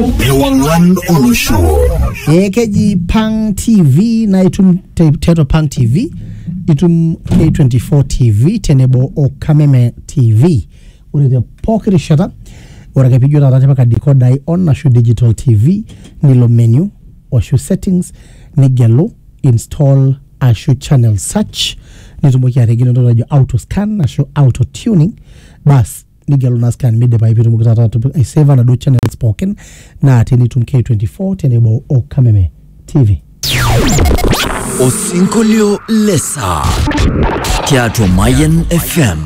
Ewang'an olosho. ee keji pang tv naa itum te- tiatua pang tv itum k24 tv tenebo o kameme tv ore te pooki rishata ore ake pijo taata tipika dikodai on ashu digital tv nilo menu ashu settings nigelu install ashu channel search nitumoki ategelu entoki najo auto scan ashu auto tuning bas nigelu naa scan midipayu piitumoki taata atipika aiseva naduo channels pookin natii nitum K24 tenebo o Kameme TV. Osinkolio lesaa tiatua Mayan FM.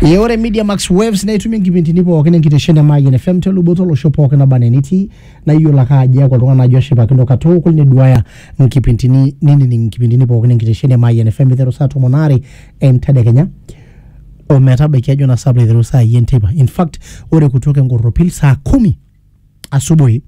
Ee ore Media Max Waves naa itumie nkipindini pookin enkitesheni e Mayian FM te luboto olosho pookin naba enaa enitii naa iyiolo ake ajo eeku oltung'ani ajo ashipakino katukul neduaya nkipindini nining nkipindini pookin enkitesheni e Mayian FM iteru saa tomon aare entedekenya o metabaiki ajo naa sapla aiteru saa yi enteipa in fact ore kutoka enkorropil saa kumi asubuhi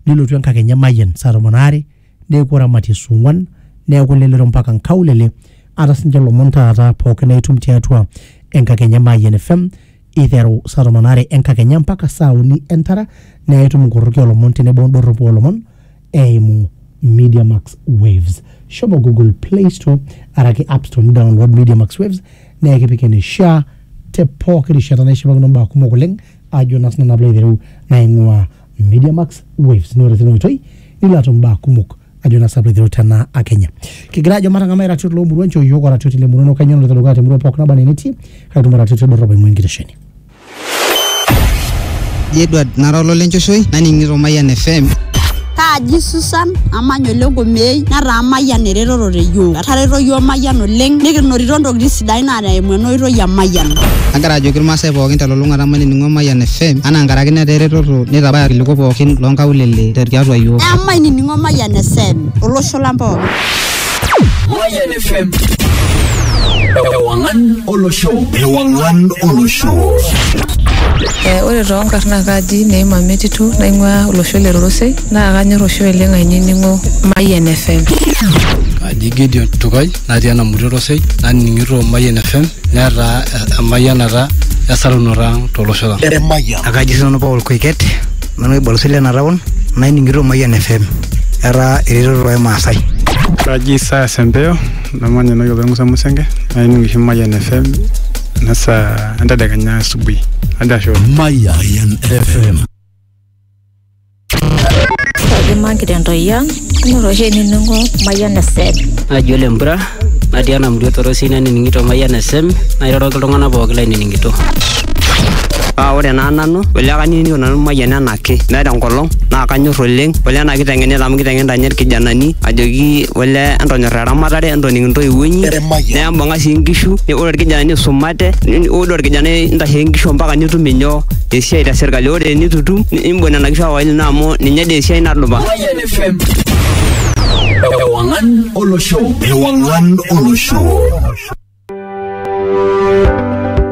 nilotu enkakenya emayian saa tomon aare neeku oramatie saa ong'wan neeku lelero mpaka nkaulele ata sinche ilomon taata pookin naitum tiatua enkakenya emayian FM iteru saa tomon aare enkakenya mpaka saa uni entara naa itum inkorroki olomon tenebo indorropu olomon eimu Media Max Waves. Shomo Google Play Store araki App Store nidownload Media Max Waves naa ekipik eneishaa te pooki rishata neshipakino mbaa kumok oleng ajo naa sinanu apilo aitereu naing'uaa Media Max Waves naa ore tina oitoi nilo atum mbaa kumok ajo naa sinanu apilo aitereu tena akenya. Kigira ajo matang'amai iratiot loomurua nchoo iyiook oratioti lemurua ino kainyoo naloito dukuya temurua pooki naba enaa enetii kake itum oratioti dorrop aing'ua enkitesheni. Ji Edward nara ololenchoshoi naning'ito Mayian FM. Kaaji Susan amanya ole Nkomeei netaa Mayian eretoto te yiok. Etareto yiok Mayian oleng nikinotito ntokitin sidain naa eimu ena oitoi e Mayian. Agira ajoki irmaasai pookin telulung'ata mainining'o Mayian FM anaa nkaraki netaa eretoto neitabaya irkiliku pookin loonkaulele tiatua yiok. Emainining'o Mayian FM olosho lang pookin. Mayan FM. Ewangan Olosho. Ewangan Olosho. Eh, ore too nkarn naa kaaji Neima Metitu naing'uaa olosho le Rorosei naa kanyor oshi oleng ainining'o Mayian FM. Aji Gideon Tukai natii ena murua Rorosei naning'ito Mayian FM netaa emayianata esarunoto ang tolosho lang. Emayian. Akaji sinanu Paul Koiket. Nanu oibalus le ena taon naining'ito Mayian FM etaa eretoto oo Maasai. Kaji saa Sempeo namanya enewueji opa Musa Musenge naining oshi Mayian FM ena saa entedekenya asubuhi. Ajo ashe oleng. Mayian FM. Kaji magira entoyia Inoto oshi enining'o Mayian FM. Naji ole Mpura natii ena murua torosi nanining'ito Mayian FM nairoroki iltung'anak pooki lainining'ito. Paa ore naa nanu ole kanining'ito nanu Mayian enaake meeta enkolong naa kanyor oleng ole ena kiteng'enita amu kiteng'enita ninye irkijanani ajoki ole entonyorra eramatare entoning intoiwuo inyi nembung'a sii inkishu ore irkijanani isumate ore orkijanai intasheki inkishu ompaka nitum inyoo esiai te sirkali ore enitu itum nimbung nena kishu aawa ine amu ninye dee esiai nadupa. FM. Ewangan Olosho. Ewangan Olosho.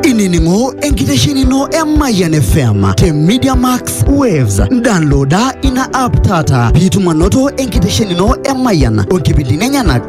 inining'o enkitesheni ino e Mayian FM te Media Max Waves. Downloada ina app taata piitum anoto enkitesheni ino e Mayian o nkipindini enyenak